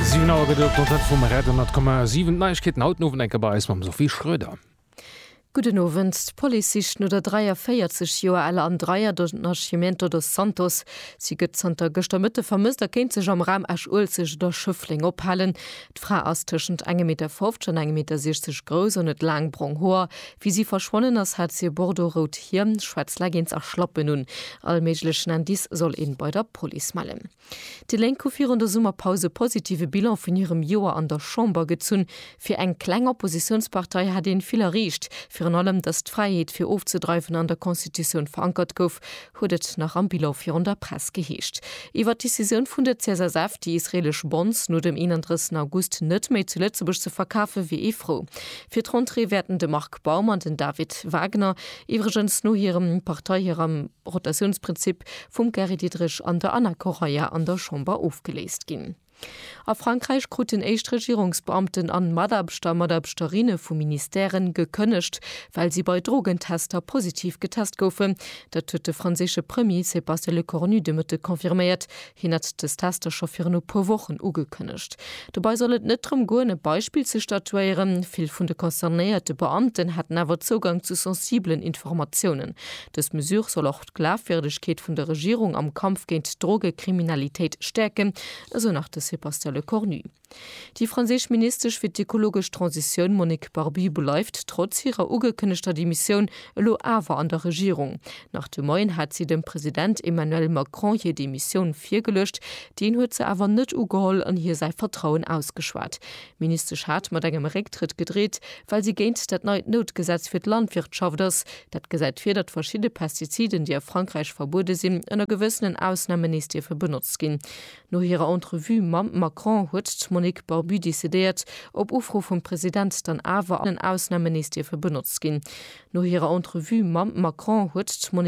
Siwen Auer gëtt et op d'Antenne vum Rad 100,7. D'Neiegkeeten haut den Owend eng Kéier bei eis mam Sophie Schröder. Gudden Owend. D'Police sicht no der 43 Joer aler Andreia do Nascimento dos Santos. Si gëtt zanter gëschter Mëtte vermësst a kéint sech am Raum Esch-Uelzecht oder Schëffleng ophalen. D'Fra ass tëschent engem Meter 50 an engem Meter 60 grouss an huet laang brong Hoer. Wéi si verschwonnen ass, hat si e bordeaux-rout Hiem, schwaarz Leggings a Schlappen un. All méiglechen Indice soll een bei der Police mellen. Déi Lénk hu virun der Summerpaus e positive Bilan vun hirem Joer an der Chamber gezunn. Fir eng kleng Oppositiounspartei hätt een vill erreecht, virun allem, datt d'Fräiheet fir ofzedreiwen an der Constitutioun verankert gouf, huet et nach am Bilan virun der Press geheescht. Iwwer d'Decisioun vun der CSSF, déi israeelesch Bonds no dem 31 August net méi zu Lëtzebuerg ze verkafen, wier ee frou. Fir d'Rentrée wäerten de Marc Baum an den David Wagner iwwregens no hirem Partei hirem Rotatiounsprinzip vum Gary Diderich an der Anna Correia an der Chamber ofgeléist ginn. A Frankräich kruten éischt Regierungsbeamten an Mataarbechter a Mataarbechterinne vu Ministèren gekënnegt, well si bei Drogentester positiv getest goufen. Dat huet de franséische Premier Sébastien Lecornu de Mëtteg confirméiert. Hien hat dës Tester scho virun e puer Wochen ugekënnegt. Dobei soll et net drëm goen, e Beispill ze statuéieren. Vill vun de concernéierte Beamten hätten awer Zougang zu sensibelen Informatiounen. Dës Mesure soll och. d'Glafwierdegkeet vun der Regierung am Kampf géint d'Drogekriminalitéit stäerken, esou nach de Sébastien Lecornu. Déi franséisch Ministesch fir d'ekologesch Transitioun Monique Barbie bleift trotz hirer ugekënnegter Demissioun elo awer an der Regierung. Nach de Moien hat si dem President Emmanuel Macron hir Demissioun virgeluecht. Deen huet se awer net ugeholl an hir säi Vertrauen ausgeschwat. D'Ministesch hat mat engem Récktrëtt gedreet, well si géint dat neit Noutgesetz fir d'Landwirtschaft ass, Dat gesäit vir, datt verschidde Pestiziden, déi a Frankräich verbuede sinn, ënner gewëssenen Ausnamen nees dierfe benotzt ginn. No hirer Entrevue mam Macron huet d'Monique Barbu decidéiert, op Ufro vum President, dann awer ënner gewëssenen Ausnamen nees dierfe benotzt ginn. No hirer Entrevue mam Macron huet d'Monique.